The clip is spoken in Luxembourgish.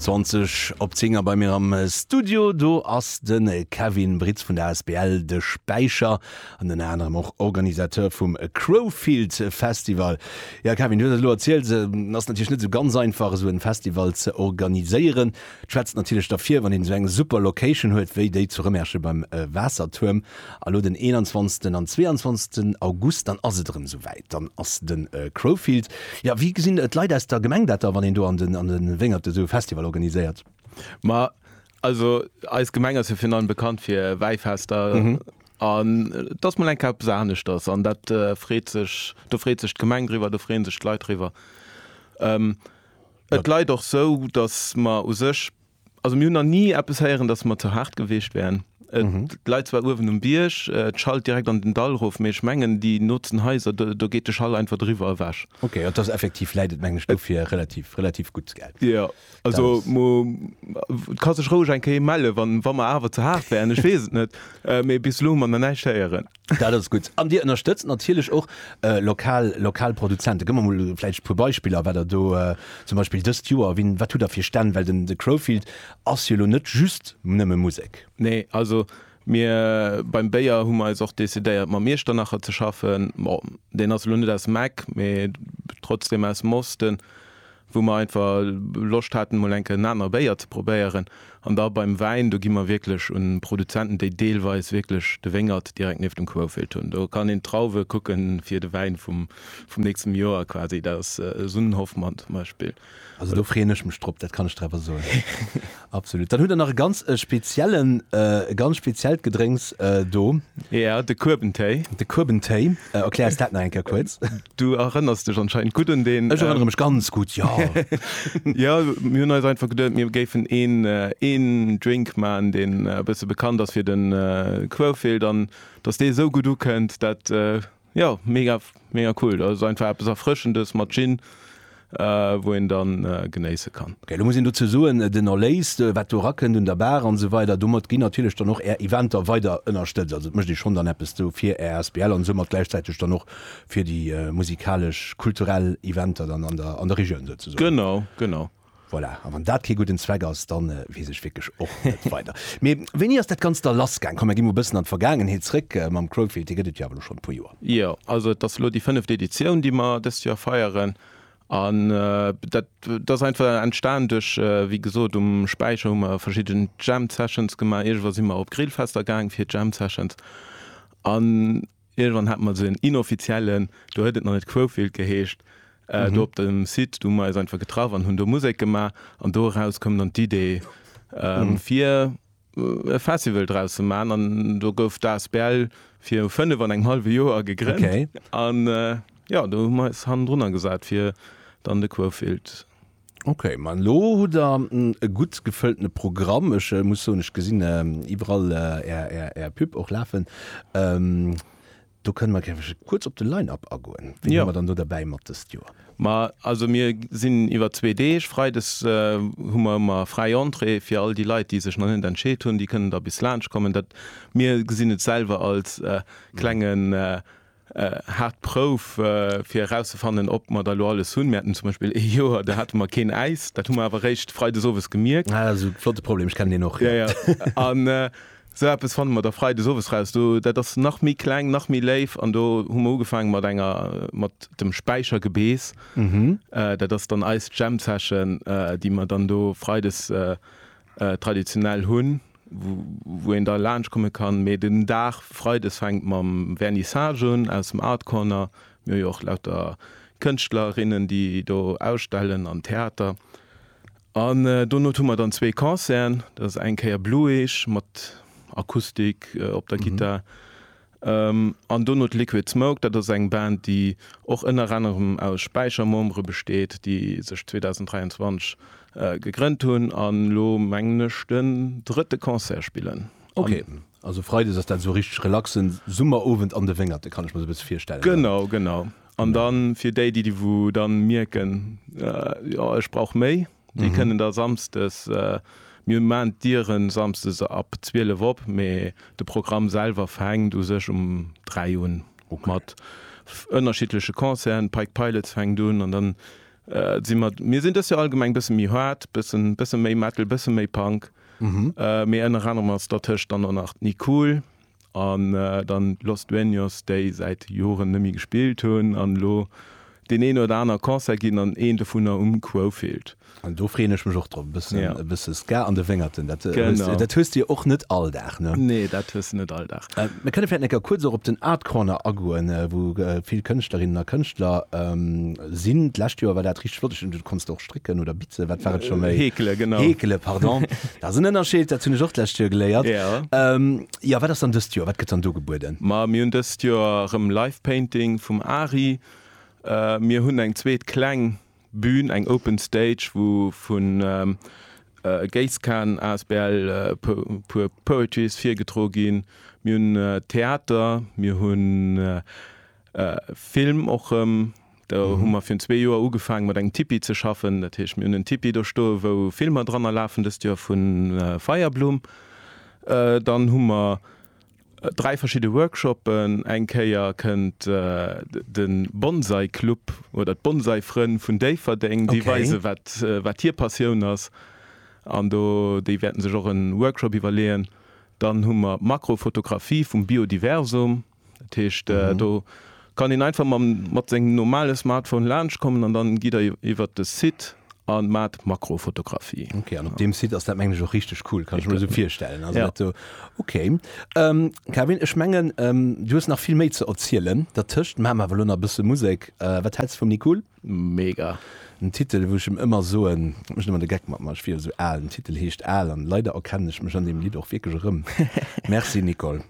20 op 10 a bei mir am Studio, do ass de Kevin Britz vun der asbl De Späicher an ënner anerem och Organisateur vum Crowfield Festival. Ja Kevin, du hues et elo erzielt, ass natierlech net esou ganz einfach esou e Festival ze organiséieren. Et schwätzt natierlech derfir, wann een esou eng super Location huet wéi déi zu Rëmerschen beim Waassertuerm. A lo den 21 an 22 August, dann ass et erëm esou wäit, dann ass de Crowfield. Jo, wéi gesinn d'Leit aus der Gemeng dat da, wann een do an de Wéngerte esou e Festival organiséiert? Ma also eis Gemeng ass jo virun allem bekannt fir Wäifester an et ass mol eng Kéier eppes aneschters an dat freet sech, do freet sech d'Gemeng driwwer, do freeën sech d'Leit driwwer. Et leit och sou, datt mer u sech, also mir hunn nach ni eppes héieren, datt mer ze haart gewiescht wären. Et leit zwar uewen um Bierg, et schallt direkt an den Dall erof, mee ech mengen déi nootsen Haiser, do geet de Schall einfach driwwer ewech. Okay, jo, et ass effektiv, läit et meng ech dofir relativ, relativ gutt gell. Jo, also et ka sech roueg eng Kéier mellen, wa mer awer ze haart wären, ech weess et net, mee bis elo hu mer nach näischt héieren. Dat ass gutt. An Dir ënnerstëtzt natierlech och lokal, lokal Produzenten. Gëtt mer mol vläicht e puer Beispiller, wat Der do zum Beispill dëst Joer, wien, wat hutt Der fir Stänn? Well den, de Crowfield ass jo elo net just nëmme Musek. Nee, also mir beim Béier hu mer eis och decidéiert, mam Iechternacher ze schaffen. Bon, deen ass elo net aus dem Eck, mee trotzdem aus dem Osten. wou mer einfach Loscht haten emol enke en aner Béier ze probéieren an da beim Wäin, do gi mer wierklech un Produzenten, déi deelweis wierklech de Wéngert direkt nieft dem Quoufeld hunn. Do kann een d'Trauwe kucke fir de Wäin vum vum nächstem Joer quasi, dat ass Sunnenhoffmann zum Beispill. Also do freeën ech mech drop, dat kann ech der awer soen. Absolut. Dann hutt der nach e ganz e speziellen, e ganz speziellt Gedrénks do. Ja, de Kuebentéi. De Kuebentéi. Erklär ons dat nach eng Kéier kuerz. Du erënners dech anscheinend gutt un deen. Ech erënnere mech ganz gutt, jo. Jo, mir hunn eis einfach geduet, mir géifen een, een Drink maachen, deen e bësse bekannt ass fir de Kuewfeeler, dass dee esou gutt ukënnt, dat Jo mega mega cool, dat ass einfach eppes erfrëschendes mat Gin wou een dann genéisse kann. Ok, lo muss een dozou soen, den Erléis wat do erakënnt un der Bar an esou weider, domat ginn natierlech dann och Är Eventer weider ënnerstëtzt. Also et mécht ee schonn dann eppes do fir Är Asbl an soumat gläichzäiteg dann och fir déi musikalesch, kulturell Eventer dann an der Regioun souzesoen. Genau, genau. Voilà, a wann dat kee gudden Zweck ass, dann weess ech wierklech och net weider. Mee wéini ass dat Ganzt da lass gaang? Komm, mer gi mol e bëssen an d'Vergaangenheet zréck. Mam Crowdfeed, dee gëtt et jo awer elo schonn e puer Joer. Jo, also et ass elo déi fënneft Editioun, déi mer dëst Joer feieren. An dat, dat ass einfach entstan duerch, wéi gesot, um Späicher hu mer verschidden Jam Sessions gemaach. Iergendwa si mer och op Grillfester gaang fir Jam Sessions. An. Iergendwann hate mer esou en inoffiziellen, do huet et nach net Quofield geheescht, do op dem Site, do hu mer eis einfach getraff an hunn do Musek gemaach. An do eraus koum dann d'Idee, fir e Festival draus ze maachen. An do gouf d'Asbl viru fënnef an engem hallwe Joer gegrënnt. An jo, do hu mer eis hannendrunner gesat, fir dann de Quofield. Ok, ma elo hutt der e gutt gefëlltene Programm. Ech muss soen, ech gesinn iwwerall är, är, är Pub och lafen. Do kënne mer gärewech kuerz op de Line-Up agoen. Wien hu mer dann do derbäi mat dëst Joer? Ma also mir sinn iwwer zwee Deeg. Freides hu mer ëmmer fräi Entrée fir all déi Leit, déi sech nach net entscheet hunn. Déi kënnen da bis laanscht kommen. Dat, mir gesinn et selwer als klenge Haart Prouf, fir erauszefannen, ob mer der elo alles hunn. Mir haten zum Beispill ee Joer, do hate mer keen Äis. Dat hu mer awer eréischt freides owes gemierkt. Ah, dat ass e flotte Problem. Ech kennen deen och. Jo, jo. An esou eppes fanne mer da freides owes raus. Do, dat ass nach méi kleng, nach méi léif. An do hu mer ugefaangen mat enger, mat dem Späichergebeess. Dat ass dann eis Jam Session, déi mer dann do freides traditionell hunn. wou een da laanscht komme kann. Mee den Dag Freides fänkt mam Vernissage un aus dem Art Corner. Mir hu jo och lauter Kënschtlerinnen, déi do ausstellen an Theater. An dono hu mer dann zwee Concerten. Dat ass eng Kéier Blueage mat Akustik op der Gittar. An dono d'Liquid Smoke, dat ass eng Band, déi och ënner anerem aus Späichermembere besteet, déi sech 2023 gegrënnt hunn an elo mengen ech den drëtte Concert spillen. Ok, also Freides ass dat esou e richteg relaxen Summerowend an de Wéngerte kann ech mer esou e bësse virstellen? Genau, genau. An dann fir déi, déi wou dann mierken, jo ech brauch méi. Déi mhm. kënnen da samstes äh, mir man Dieren samstes ab 12 op, mee de Programm selwer fängt u sech um 3 un okay. mat ënnerschiedlesche Konzern, Pike Pilots fängt un an dann äh, si mat mir sinn dës jo allgemeng bësse mi hart, bëssen bësse méi Metal, bësse méi Punk. Mhm. Äh, mir ënner Ranner mat der Tëscht dann nach ni cool. an dann Los Dueños, déi säit Joren nemme gespillt hunn an elo deen een oder aner Concert ginn an een dovunner um Quofield. An do freeën ech mech och drop, e bëssen e bësse Ska an de Wéngerten, dat dat hues de jo och net all Dag, ne? Nee, dat hues de net all Dag. Mir kënne vläit necker kuerz och op den Art Corner agoen, wou vill Kënschtlerinnen a Kënschtler sinn. D'lescht Joer war dat richteg flott, ech konns do och Strécken oder Bitze, wat war et scho méi? Heekele, genau. Heekele, pardon. Dat ass en Ënnerscheed, dat hunn ech och d'lescht Joer geléiert. Ja. Ähm, jo, wat ass dann dëst Joer, wat gëtt dann do gebueden? Ma mir hunn dëst Joer erëm Live Painting vum Ari. Mir hunn eng zweet kleng Bühn, eng Open Stage, wou vu Geiskan asbl e puer Poetries virgedro ginn. Mir hunn Theater, mir hunn Film och rëm. Do hu mer virun zwee Joer ugefaange mat engem Tipi ze schaffen. Dat heescht, mir hunn en Tipi do stoe wou Filmer dranner lafen, dëst Joer vu Feierblumm. Dann hu mer dräi verschidde Workshoppen. Eng Kéier kënnt de Bonsai-Club oder d'Bonsai-Frënn vun Déifferdeng, déi weise wat hir Passioun ass an do déi wäerten sech och e Workshop iwwerleeën. Dann hu mer d'Makrofotografie vum Biodiversum. Dat heescht mhm. do kann een einfach mal mat seng normale Smartphone launch kommen an dann gi der iwwer de Site an mat Makrofotografie. Okay, an op dem Site ass dat mengg och richtig cool, kann ich mir so virstellen. Also ja. so, okay. Ähm, Kevin, ich mengen ähm, du hast nach viel méi ze erzielen. Dat Tëscht Ma ma Wallonner bësse Musik. Äh, wat hältst vum Nicole? Mega. Den Titel wo ich ihm immer so en mech immer de Geck mat mach wie so all den Titel heescht all an leider erkenne ich mech an dem Lied auch wirklich rëm. Merci Nicole.